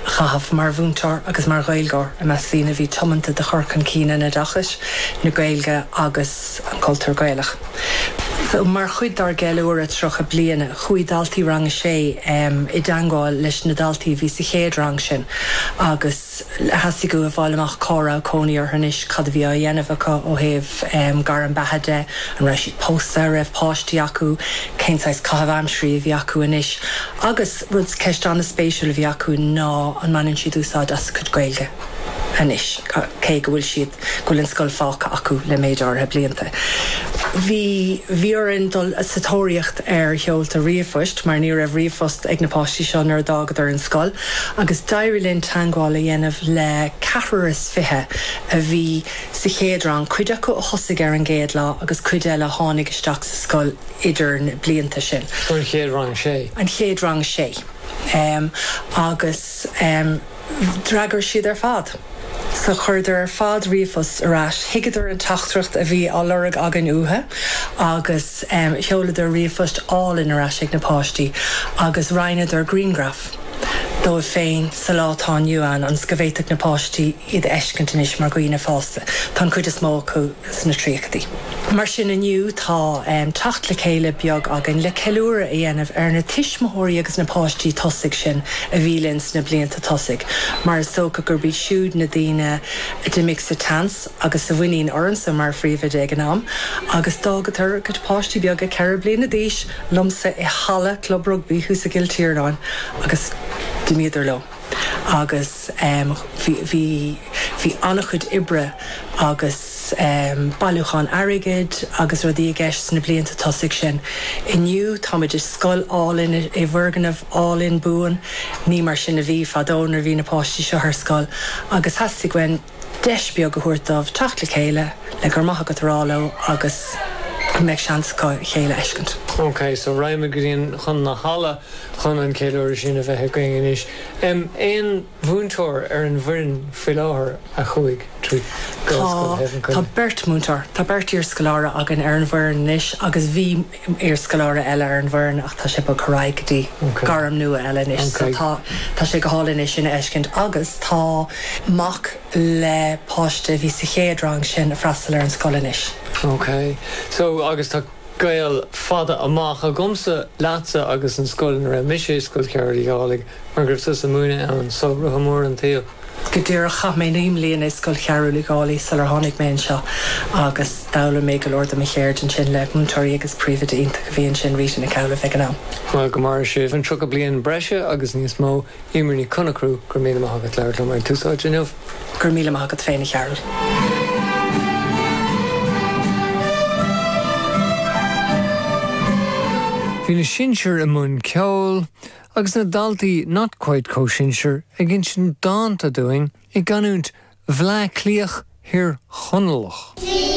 a chaitheamh mar mhúinteoir agus mar Ghaeilgeoir i measc daoine a bhí tiomanta do chur chun cinn an oideachais, na Gaeilge agus an cultúir Gaelach. Mar chuid dár gceiliúradh 30 bliana, chuaigh daltaí Rang a Sé i dteangmháil leis na daltaí a bhí sa chéad rang sin agus theastaigh uathu a fháil amach cá raibh cónaí orthu anois, cad a bhí á dhéanamh acu ó thaobh gairm beatha de, an raibh siad pósta, an raibh páistí acu, cén saghas caitheamh aimsirí a bhí acu anois agus. Rud, ceist an-spéisiúil a bhí acu ná an mbaineann siad úsáid as a gcuid Gaeilge anois, cé go bhfuil siad, go bhfuil an scoil fágtha acu le méid áirithe blianta. Bhí, bhí orainn dul sa tóraíocht ar sheoltaí ríomhphoist, mar ní raibh ríomhphost ag na páistí seo nuair a d'fhágadar an scoil, agus d'éirigh linn teagmháil a dhéanamh le ceathrar is fiche a bhí sa chéad rang, cuid acu a thosaigh ar an gcéad lá agus cuid eile a tháinig isteach sa scoil idir na blianta sin, an chéad rang sé agus d'fhreagair siad ar fad. So chuireadar ar fad ríomhphost ar ais. Thuigeadar an teachtaireacht a bhí á lorg againn uathu agus sheoladar ríomhphost álainn ar ais ag na páistí agus roinneadar grianghraf díobh féin sa lá atá inniu ann le go bhféadfadh na páistí iad a fheiscint anois mar dhaoine fásta. Tá an chuid is mó acu sna tríochaidí. Mar sin, inniu tá teacht le chéile beag againn le ceiliúradh a dhéanamh ar na tuismitheoirí agus na páistí tosaigh sin a bhí linn sna blianta tosaigh, mar is dócha gurb iad siúd na daoine a d'imigh sa tseans agus a bhain ormsa mar phríomhoide ag an am agus d'fhágadar a gcuid páistí beaga ceithre bliana d'aois liomsa i halla Club Rugbaí thuas i gCill Tiarnáin agus d'imíodar leo. agus bhí, bhí, bhí an-chuid oibre agus bailiúchán airgid agus rudaí i gceist sna blianta tosaigh sin. Inniu, táimid i scoil álainn, i bhfoirgneamh álainn buan. Ní mar sin a bhí fadó nuair a bhí na páistí seo ar scoil agus theastaigh uainn, deis bheag a thabhairt dóibh teacht le chéile le 'Go raibh maith agat' a rá leo agus go mbeadh seans acu a chéile a fheiscint. OK, so raghaimid go dtí an, chun na halla chun an ceiliúradh sin a bheith againn anois. Em, aon mhúinteoir ar an bhfoireann faoi láthair a chuaigh trí? Tá, tá beirt mhúinteoir, tá beirt iarscoláire againn ar an bhfoireann anois agus bhí, iarscoláire eile ar an bhfoireann ach tá sé bogtha ar aghaidh go dtí gairm nua eile anois so tá tá sé go hálainn é sin a fheiscint agus tá mac le páiste a bhí sa chéad rang sin ag freastal ar an scoil anois. OK so agus tá gaol fada amach agamsa leatsa agus an scoil ina raibh mise i Scoil Chearúil Uí Dhálaigh mar go raibh tusa ag múineadh ann so rotha mór an tsaoil. Go díreach, chaith mé naoi mbliana i Scoil Chearbhaill Uí Dhálaigh sular tháinig mé anseo agus d'fhoghlaim mé go leor de mo cheird ansin le múinteoirí agus príomhoide iontach a bhí ansin, Rita Nic Amhlaoibh, ag an am. Bhuel, go maire sibh an tríocha bliain breise agus níos mó. Emer Ní Chonachrú, Go raibh míle maith agat labhairt liom ar Tús Áite inniu. Go raibh míle maith agat féin, a Chearbhaill. Bhí na sinsir i mbun ceoil Agus na daltaí 'not quite comhsinsir' ag insint dánta dúinn i gcanúint Bhleá Cliath Thír Chonallach.